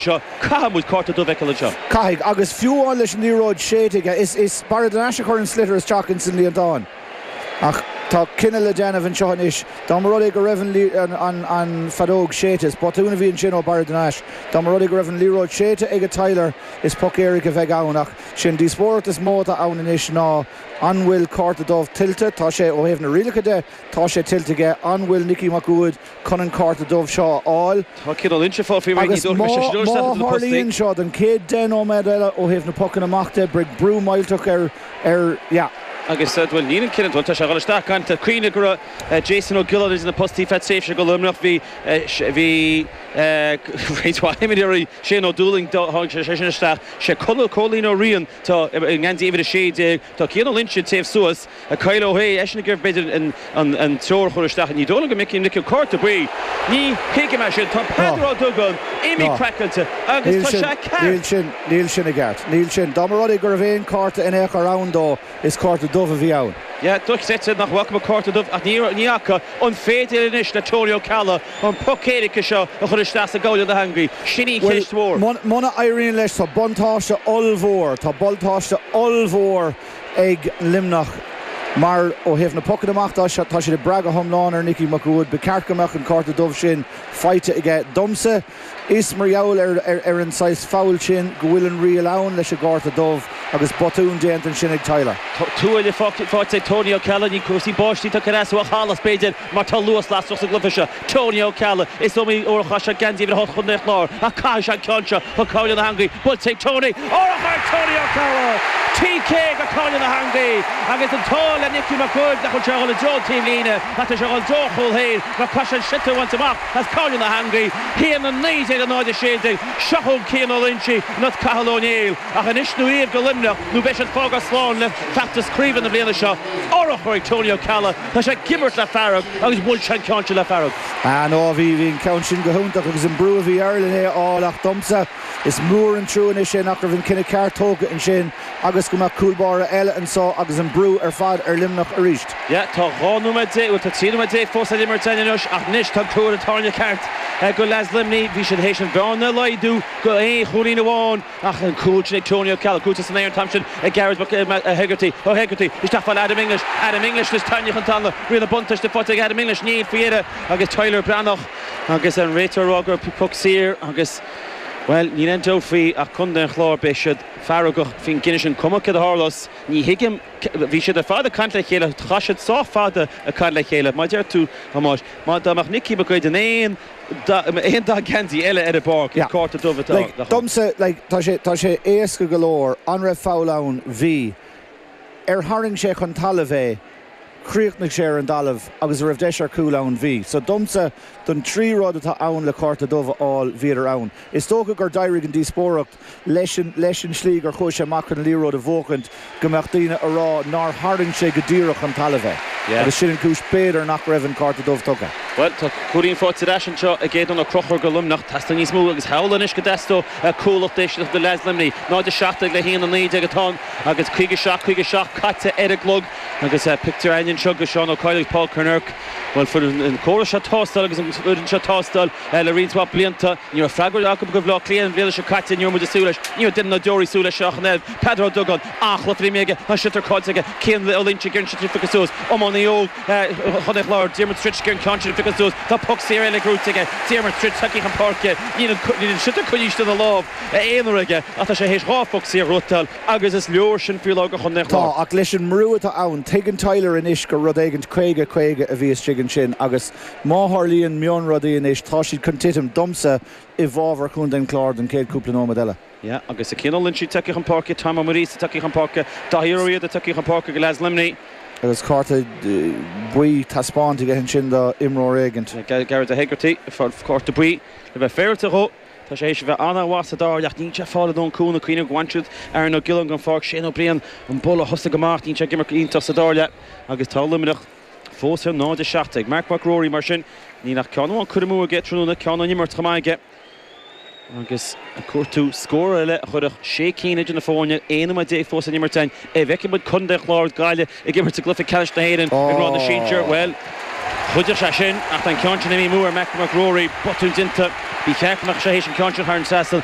seo. Caithfidh muid cárta dubh fheiceal anseo. Caithfidh. Agus fiú amháin leis an liathróid séidte aige, is is Barra de Nais a chuireann sliotar isteach ins an líontán. Ach tá cinneadh le déanamh anseo anois. Dá mba rud é go raibh an an an feadóg séidte, is botún a bhí ansin ó Barra de Nais, dá mba rud é go raibh an liathróid séidte ag Tyler, is poc éirice a bheidh ann. Ach sé an díospóireacht is mó atá ann anois ná an bhfuil cárta dubh tuillte. Tá sé, ó thaobh na rialacha de, tá sé tuillte aige. An bhfuil Nicky Mac Uaid. chun an cárta dubh seo a fháil. Tá cineál inseafá faoi ré, ní Agus dóigh má, leis an má Stiúrthóir Seachas do na Postaí. tharlaíonn seo don chéad deich nóiméad eile ó thaobh na pocanna amach de, beidh brú millteach ar, ar, yeah. Agus, bhuel, níl an cineál, bhuel, tá sé ag dhul isteach gan, tá cuimhne go raibh Jason Ó Giolláin idir na postaí feadh tréimhse do Luimneach, bhí, bhí roinnt mhaith imreoirí, Shane Ó Dúlaing, do, tháinig sé, sé sin isteach, sé Conall Cóilín Ó Riain atá i ngeansaí uimhir a sé déag. Tá Cian Ó Loingsigh taobh suas ag Kyle Ó hAodha eisean ag ar b'fhéidir an t-imreoir a chur isteach inní. D'fhoghlaim go mic Uí Mhicil cárta buí. Ní thuigim é sin. Tá Peadar Ó Dúgáin imithe craiceáilte agus tá sé ag ceart. Níl sin i gceart. Níl sin. Dá mba rud é gurbh aon cárta in aon chor ann dó, is cárta dubh a bhí ann. Yeah, duitse, nach bhfaca mé cárta dubh ach ní fhaca. An féidir anois le Tony Ó Ceallaigh an poc éirice seo a chur isteach sa gcoirnéal na heangaí? Sin í an cheist mhór. Bhuel, muna éiríonn leis, tá buntáiste ollmhór, tá buntáiste ollmhór ag Luimneach mar ó thaobh na pocanna amach de, tá siad ag brath go hiomlán ar Nicky Mac Uaid. Ba cheart go mbeadh an cárta dubh sin faighte aige domsa. Is mar gheall ar an saghas fabhail sin go bhfuil an riail ann leis an gcárta dubh agus botún déanta ansin ag Tyler. Tuáille faighte ag Tony Ó Ceallaigh, ní cúrsaí báistí atá ag cur as dó ach allas, b'fhéidir, mar tá luas lasrach sa gcluiche seo. Tony Ó Ceallaigh, Is iomaí uair a chaith sé geansaí uimhir a hocht Chontae an Chláir ach caithfidh sé an ceann seo go coirnéal na heangaí. Buailte ag Tony, urchar ag Tony Ó Ceallaigh! TK go coirnéal na heangaí agus an t-ádh le Nicky Mac Uaid nach bhfuil sé ag dhul i dtreo an taobhlíne ach tá sé ag dhul i dtreo a chúl féin mar caithfidh sé an sliotar a bhaint amach. As coirnéal na heangaí céanna 1916 seo chugainn Cian Ó Loingsigh nó Cathal Ó Néill ach anois nó riamh do Luimneach nó beidh siad ag fágáil slán le feachtas craoibhe na bliana seo. Urchar ag Tony Ó Ceallaigh, tá sé ag imirt le fearg agus bhuail sé an ceann sin le fearg. Ah no, bhí, bhí an ceann sin go hiontach agus an brú a bhí air len é a fháil ach domsa is mór an trua anois é nach raibh an cinneadh ceart tógtha ansin. Agus go mbeadh cúl báire eile anseo agus an brú ar fad ar Luimneach arís. Yeah, tá dhá nóiméad déag, bhuel tá trí nóiméad déag fós le n-imirt anois ach anois tá tuar an tairne ceart ag dul as Luimnigh. Bhí siad théis an bhearna a laghdú go aon chúilín amháin ach an cúl sin ag Tony Ó Ceallaigh, cúiteamh san aer an t-am sin ag Gearóid Mac, Mac, Hegarty, Ó Hegarty, isteach fáil Adam English, Adam English anois tarraingthe chun talaimh, riail na buntáiste faighte ag Adam English, níl faoi dheireadh agus Tyler Breathnach agus an réiteoir á rá go raibh poc saor agus, bhuel, níl aon dabht faoi ach contae an Chláir, beidh siad. feargach faoin gcinneadh sin. Cuma céard a tharlós, ní thuigim, bhí siad ar fad ag caint le chéile, chaith siad sách fada ag caint le chéile. Mar a deir tú, a Thomáis, má, dá mbeadh Nicky Mac Uaid in aon, aon dath geansaí eile ar an bpáirc, is cárta dubh a bheadh ann. Domsa, like, tá sé, tá sé éasca go leor, an raibh foul ann? Bhí. Ar tharraing sé chun talaimh é, chríochnaigh sé ar an dtalamh agus a raibh deis ar chúl ann? Bhí. So domsa, don trí rud atá ann le cárta dubh a fháil, bhíodar ann. Is dócha gur d'éirigh an díospóireacht. leis an tslí gur chuaigh sé amach chun an liathróid a bhuachaint go mbeadh daoine a rá nár tharraing sé go díreach chun talaimh é agus sin an chúis b'fhéidir nach raibh an cárta dubh tugtha. Bhuel, tá cúilín faighte ar ais anseo ag Aodán Ó Conchúir do Luimneach. Teastaíonn níos mó agus amhlaidh anois go dteastódh cúlacht éisteachta do leaids Luimnigh. 0, 17 le haon, 19 atá ann agus 57, 57 caite ar an gclog agus pictiúr againn anseo de Sheán Ó Cadhla agus Paul Kinnerk. Bhuel, fuair an córas seo tástáil agus an fhoireann seo tástáil le roinnt mhaith blianta. Ní raibh freagra acu do Bhleá Cliath an bhliain seo caite ní raibh muid ag súil leis. Ní raibh duine ná deoraí ag súil leis seo ach an oiread, Peadar Ó Dugáin. An-chluiche imrithe aige, an sliotar caillte aige, Cian Ó Loinnsigh ag iarraidh an sliotar a phiocadh suas, iománaí óg Chontae an Chláir, Diarmuid Stritch ag iarraidh an ceann sin a phiocadh suas, tá poc saor eile gnóthaithe aige, Diarmuid Stritch tagtha chun páirce, níl an sliotar coinnithe istigh ina lámh aon uair aige ach tá sé théis dhá phoc saor a ghnóthachtáil agus is leor sin faoi láthair do Chontae an Chláir. Tá, ach leis an mbrú atá ann, tuigeann Tyler anois gur rud éigint caoga, caoga a bhí istigh ansin agus Má tharlaíonn mionrudaí anois, tá siad chun titim, domsa, i bhfabhar Chontae an Chláir don chéad cúpla nóiméad eile. Yeah, agus Cian Ó Loinsigh tagtha chun páirce, Tom Ó Muiríosa tagtha chun páirce, Daithí Ó Riada tagtha chun páirce do leaids Luimnigh. Agus cárta buí taispeánta aige ansin do imreoir éigin. Yeah, Gearóid Hegarty ag fáil cárta buí, le bheith féaráilte dhó. Tá sé théis a bheith an-mhaith sa dara leath. Níl sé ag fáil a lán cúnaimh, ag cuimhneamh gur bhain siad Aaron Ó Giolláin den pháirc, Shane Ó Briain an Bull a thosaigh amach. Níl sé ag imirt go iontach sa dara leath agus tá Luimneach. fós ar 0-17. Marc Mac Ruairí, mar sin, níl ach ceann amháin curtha amú aige tráthnóna, ceann ón imirt chomh maith aige agus ag cuartú scór eile a chuirfeadh sé cinn idir na foirne 11 nóiméad fós le n-imirt againn. An bhfeicfidh muid Contae an Chláir agus Gaillimh ag imirt i gcluiche ceannais na hÉireann i ngrád na sinsear, bhuel, chuideodh sé sin ach tá an ceann sin imithe amú ar Mharc Mac Ruairí. Botún déanta. Ba cheart go mbeadh sé théis an ceann sin a tharraingt trasna.